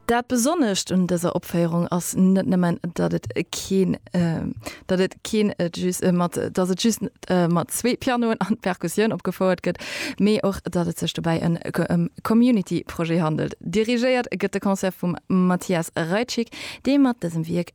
Dat Besonnescht un dëser Opféierung ass net nëmmen, datt et keen, datt et keen just mat, datt et just mat zwee Pianoen an Perkussioun opgefouert gëtt, mee och, datt et sech dobäi en ëm Community-Projet handelt. Dirigéiert gëtt de Concert vum Mathias Reitschig, dee mat dësem Wierk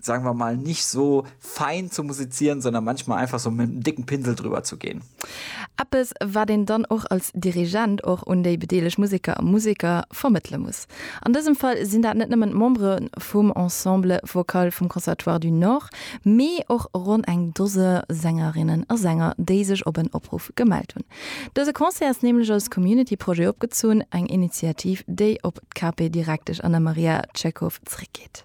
sagen wir mal, nicht so fein zu musizieren, sondern manchmal einfach so mit einem dicken Pinsel drüber zu gehen. Eppes, wat een dann och als Dirigent och un déi bedeelegt Museker a Museker vermëttele muss. An dësem Fall sinn dat net nëmmen d'Membere vum Ensemble Vocal vum Conservatoire du Nord, mee och ronn eng Dose Sängerinnen a Sänger, déi sech op en Opruff gemellt hunn. Dëse Concert ass nämlech als Community-Projet opgezunn, eng Initiativ, déi op d'Cape Direktesch Anna Maria Tschechow zréckgeet.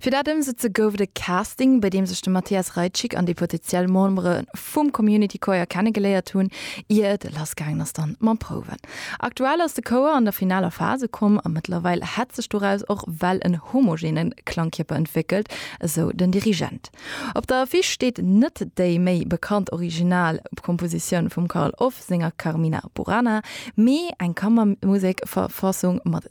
Fir dat ëmsetze gouf et e Casting, bei deem sech de Mathias Reitschig an déi potetiell Membere vum Community Choir kennegeléiert hunn, ier et lass gaangen ass dann mam Prouwen. Aktuell ass de Chouer an der finaler Phas ukomm a mëttlerweil hätt sech doraus och well en homogene Klangkierper entwéckelt, esou den Dirigent. Op der Affiche steet net déi méi bekannt original Kompositioun vum Carl Orff senger Carmina Burana, mee eng Kammermusekverfassung mat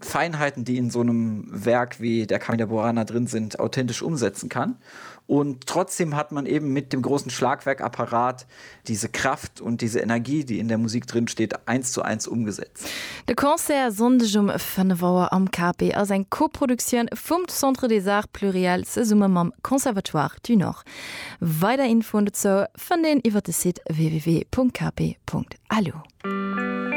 Feinheiten, die in so nem Werk wie der Camilla Burana drin sind, authentisch umsetzen kann. Und trotzdem hat man eben mit dem großen Schlagwerkapparat diese Kraft und diese Energie, die in der Musik drin steht, eins zu eins umgesetzt. De Concert Sonndeg um 5 Auer am KP ass eng Koproduktioun vum Centre des Arts Pluriels zesumme mam Conservatoire du Nord. Weider Infoen dozou fënnt een iwwer de Site www.kp.lu.